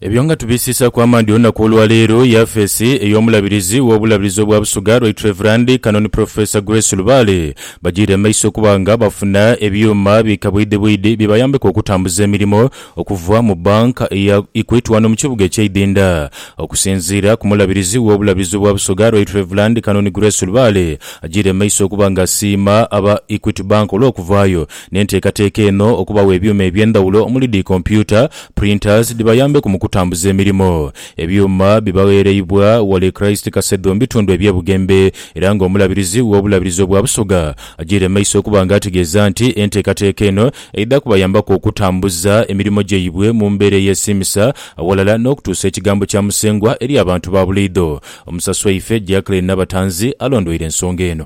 Ebyo nga tubisiisaaku amaadhi olunaku olwaleero, yafeesi ey'omulabirizi w'obulabirizi obwa Busoga Right Rev. Canon Professor Grace Lubaale bajiire mu maiso okuba nga bafuna ebyuuma bi kabwidhibwidhi bibayambeku okutambuza emirimo okuva mu Bank ya Equity wano mu kibuga ekye Idhindha. Okusinziira ku mulabirizi w'obulabirizi obwa Busoga Right Rev. Canon Grace Lubaale ajiire mu maiso okuba nga asiima aba Equity Bank olw'okuvaayo n'enteekateeka eno okubawa ebyuma eby'endhawulo omuli dhi kompyuta, printers, dhibayambeku mu kutambuza emirimo. Ebyuma bibagheereibwa Wally Christ Kasedho mu bitundu eby'e Bugembe era nga Omulabirizi w'Obulabirizi obwa Busoga agyeire mu maiso okuba nga ategeeza nti enteekateeka eno eidha kubayambaku okutambuza emirimo gyaibwe mu mbeera eyesiimisa awalala n'okutuusa ekigambo kya Musengwa eri abantu ba buliidho. Omusasi waife Jacqueline Nabatanzi alondweire ensonga eno.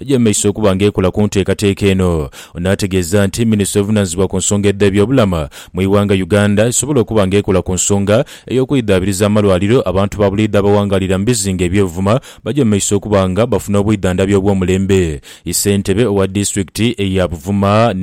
Eja mu maiso okuba nga ekola ku nteekateeka eno. Ono ategeeza nti minisitule evunanizibwa ku nsonga edhe byobulamu mu ighanga Uganda esobola okuba nga ekola ku nsonga eyokweidhabiriza amalwaliro abantu ba buliidho abawangalira mu bizinga ebyebuvuma baje mu maiso okuba nga bafuna obwidhandhabi obwomulembe. Ssentebe owa disitulikiti eya Buvuma,